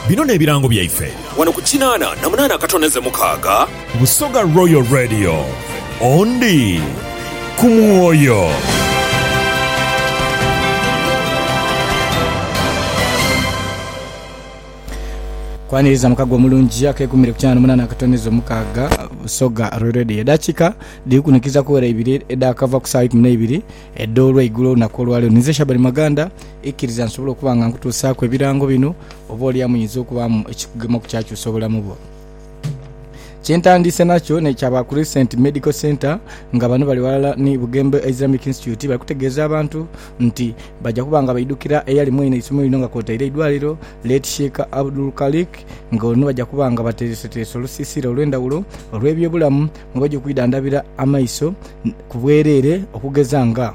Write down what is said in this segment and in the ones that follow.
Bino n'ebirango byaife. Wano ku kinaana na munaana akatoneze mukaaga. Busoga Royal Radio, ondi ku mwoyo. Kwaniriza mukago omulungi akegumire ku kinaana munaana akatoneze mukaaga. Busoga Royal Radio. Edakika dhiri kunikiza kuwera ibiri edhakava ku saawa ikumi neibiri. Edho olweigulo olunaku olwaleero ninze Shaban Maganda, ikiriza nsobole okuba nga nkutuusaaku ebirango bino oba oli amuyinza okubaamu ekikugema ku kyakyusa obulamu bwo. Kye ntandiise nakyo n'ekya ba Crescent Medical Centre nga bano bali ghalala ni Bugembe Islamic Institute bali kutegeeza abantu nti baja kuba nga baidhukira eyali mwene eisomero lino nga kwotaire eidwaliro late Sheik Abdul Khaliq nga ono baja kuba nga bateereseteerese olusiisira olw'endhawulo olw'ebyobulamu nga baja okwidhandhabira amaiso ku bwereere okugeza nga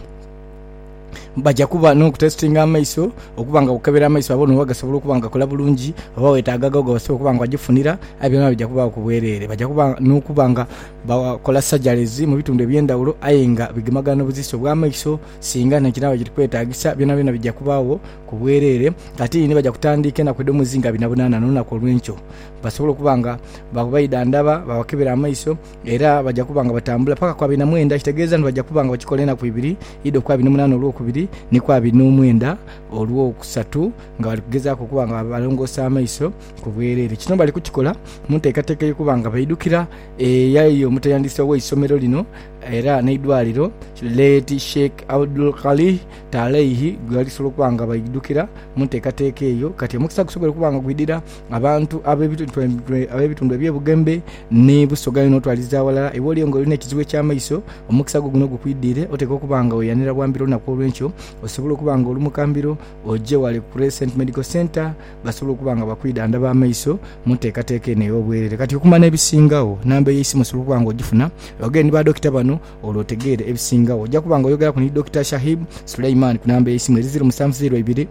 baja kuba n'okutesitinga amaiso okuba nga bakukebera amaiso babone oba gasobola okuba nga gakola bulungi oba weetaaga agho gebasobola okuba nga bajifunira. Aye byona bya kubaagho ku bwereere. Baja kuba n'okuba nga bakola sajaleezi mu bitundu eby'endhaghulo aye nga bigemagana n'obuzisu obw'amaiso singa nayo kinaaba kiri kwetaagisa. Byonabyona bija kubaagho ku bwereere. Ate ni baja kutandiika enaku edh'omwezi nga binaabonanha n'olunaku olw'enkyo. Basobola okuba nga baidha ndaba, baabakebera amaiso, era baja kuba nga batambula paka ku abiri na mwenda, ekitegeeza nti baja kuba nga bakikola enaku ibiri, idho ku abiri na munaana olwokubiri, ni ku abiri n'omwenda olwokusatu, nga bali kugezaaku okuba nga balongoosa amaiso ku bwereere. Kino bali kukikola mu nteekateeka ey'okuba nga baidhukira eyali omutendesi ow'eisomero lino era n'eidwaliro, Late Sheikh Abdul Khalih Taalaih, ghe balisobola okuba nga baidhukira mu nteekateeka eyo. Kati omukisa gusobola okuba nga gwidhira. Abantu ab'ebitundu eby'ebugembe ni busoga inho otwaliza aghalala. Iwe oliyo ng'olina ekizibu eky'amaiso, omukisa gwo guno gukwidiire. Oteekwa okuba nga weeyanira bwa mbiro olunaku olw'enkyo. Osobole okuba nga oli mu kambiro, oje ghale ku Crescent Medical Centre basobole okuba nga bakwidhandhaba amaiso mu nteekateeka eno ey'obwerere. Kati okumanya ebisingagho, namba ey'eisimu osobola okuba nga ogifuna. Yogere ni badokita bano olwo otegeere ebisingagho. Oja kuba nga oyogeraku ni Dokita Shahib Suleiman ku namba ey'eisimu eri ziiro musanvu ziiro ibiri,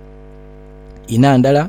ina ndala,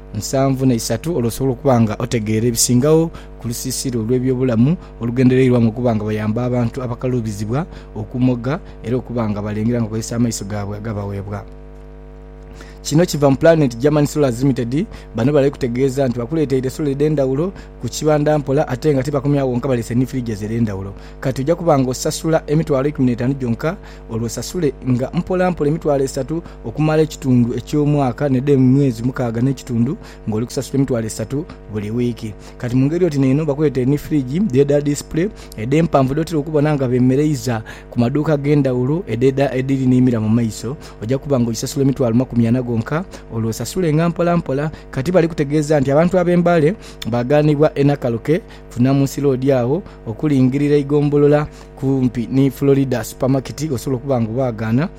nsanvu na isatu olwo osobole okuba nga otegeera ebisingagho ku lusiisira olw'ebyobulamu olugendereirwamu okuba nga bayamba abantu abakaluubizibwa okumoga era okuba nga balengera nga bakozesa amaiso gaabwe agabaweebwa. Kino kiva mu Planet German Solars Limited, bano bali kutegeeza nti bakuleeteire sola edh'endhawulo ku kibanda mpola ate nga tibakomyawo wonka baleese ni fridges edh'endhawulo. Kati oja kuba nga osasula emitwalo ikumi n'etaanu gyonka. olwo sasule nga mpola mpola emitwalo esatu okumala ekitundu eky'omwaka n'edh'emwezi mukaaga n'ekitundu, ng'oli kusasula emitwalo esatu buli wiiki. Kati mu ngeri oti n'eno bakuleetera ni firigi dh'edha disipule edh'empanvu dh'otera okubona nga beemereiza ku maduuka ag'endhawulo edh'edha edhiri n'emira mu maiso. Oja kuba ng'ogisasula emitwalo makumi ana gonka, olwo osasulenga mpola mpola. Kati bali kutegeeza nti abantu ab'e Mbale baagaanibwa e Nakaloke ku Namunsi Loodi agho okulingirira eigombolola kumpi ni Florida supamaketi, osobola okuba nga obaagaana,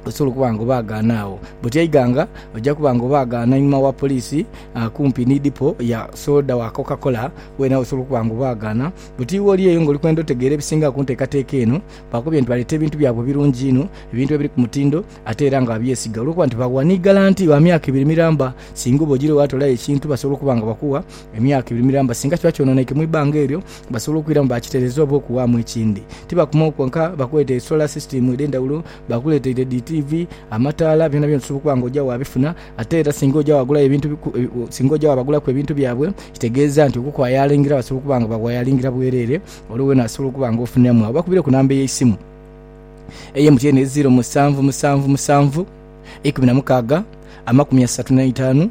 osobola okuba nga obaagaana agho. Bwoti eighanga oja kuba nga obaagaana einhuma wa poliisi, kumpi ni dipo ya soda wa Coca-Cola, weenagho osobola okuba nga obaagaana. Bwoti iwe oli eyo nga oli kwenda otegeera ebisinga ku nteekateeka eno, baakubwire nti baleeta ebintu byabwe birungi inho, ebintu ebiri ku mutindo ate era nga babyesiga olw'okuba nti bagha ni galanti wa myaka ebiri miramba. Singa oba ojiire waatolayo ekintu, basobola okuba nga bakuwa emyaka ebiri miramba singa kiba kyononeike mu ibanga eryo. Basobola okwiramu baakitereeza oba okuwaamu ekindi. Tibakoma okwo kwonka, bakuleeta esola sisitiimu edh'endhawulo, baakuleeteire dhi tiivi, amataala, byonabyona osobola okuba nga oja waabifuna. Ate era singa oja waagulayo ebintu, singa oja waabagulaku ebintu byabwe, kitegeeza nti okukwayalingira basobola okuba nga bakwayalingira bwereere, olwo weena osobola okuba nga ofuniramu agho. Bakubire ku namba ey'eisimu eye MTN eri ziiro musanvu musanvu musanvu, ikumi na mukaaga, amakumi asatu n'eitaanu.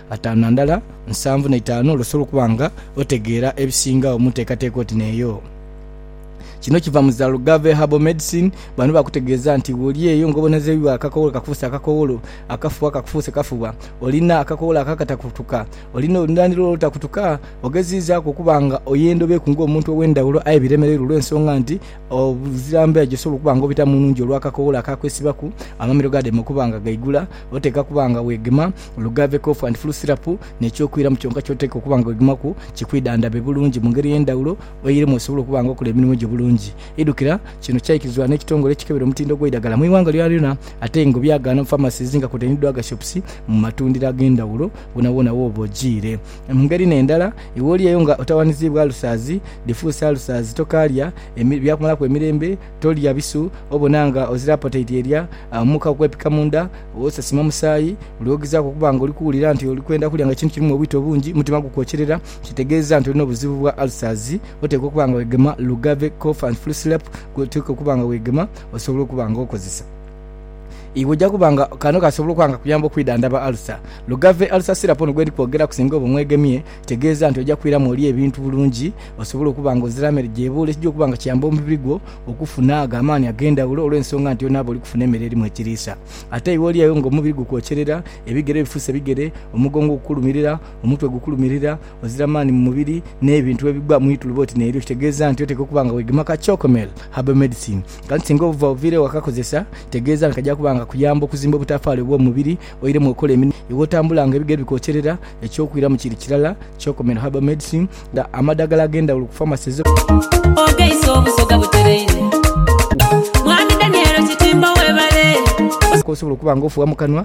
ataanu na ndala, nsanvu na itaanu olwo osobola okuba nga otegeera ebisingagho mu nteekateeka oti n'eyo. Kino kiva mu za Lugave Herbal Medicine, bano bakutegeeza nti bw'oli eyo ng'obonezeibwa akakowolo kakufuuse akakowolo, akafuba kakufuuse kafuba, olina akakowolo akakatakutuka, olina olunhiliro olutakutuka, ogeziizaaku okuba nga oya endhobo eku ng'omuntu ow'endhawulo aye biremereirwe olw'ensonga nti obuzira mbeera gy'osobola okuba nga obitamu nnhungi olw'akakowolo akakwesibaku, amamiro gaadema okuba nga gaigula, oteekwa kuba nga weegema Olugave, Cough and Flu Syrup, n'eky'okwiramu kyonka ky'oteekwa okuba nga ogimaku kikwidhandhabe bulungi mu ngeri ey'endhaghulo oiremu osobole okuba nga okola emirimo gyo bulungi. Idhukira, kino kyaikirizibwa n'ekitongole ekikebera omutindo gw'eidagala mu ighanga lyonalyona ate ng'obyagaana mu pharmacies nga kwotaire ni drug shops mu matundiro ag'endhaghulo woonawoona wooba ojiire. Mu ngeri n'endala, iwe oliyo nga otawaniziibwa alusazi, diffuse ulcers, tokaalya byakumalaku emirembe, Tolya bisu obona nga ozira apotaiti erya mu ka okwepika mu nda, osasima musaayi. Buli wogezaaku okuba nga oli kuwulira nti oli kwenda kulya nga ekintu kirimu obwita obungi, omutima gukwokyerera, kitegeeza nti olina obuzibu bwa ulcers. Oteekwa okuba nga wegema Lugave Cough and Flu Syrup gwoteekwa okuba nga wegema osobole okuba nga okozesa. Iwe oja kuba nga kano kasobola okuba nga kakuyamba okwidhandhaba ulcer. Lugave Ulcer Syrup ono gwendi kwogeraku singa oba omwegemye Kitegeeza nti oja kwiramu olye ebintu bulungi osobole okuba nga ozira mere gy'ebuula ekija okuba nga kiyamba omubiri gwo okufuna ago amaani ag'endhawulo olw'ensonga nti onaaba oli kufuna emere erimu ekiriisa. Ate iwe olyayo nga omubiri gukwokyerera, ebigere bifuuse bigere, omugongo gukulumirira, omutwe gukulumirira, ozira maani mu mubiri, n'ebintu ebigwa mu ituluba oti n'eryo, kitegeeza nti oteekwa okuba nga weegema ka Chocomel Herbal Medicine. Kati singa obuva oviire ewaka kozesa, kitegeeza nti kaja kuba nga kakuyamba okuzimba obutafaali obw'omu mubiri Oiremu okola emirimo yo bw'otambula nga ebigere bikokyerera, eky'okwiramu kiri kirala kyokomera herbal medicine nga amadhagala ag'endhawulo ku pharmacies. Ogeise obusoga butereire. Mwami Daniel Kitimbo webale. Okola okusobola okuba nga ofuuwa mu kanwa.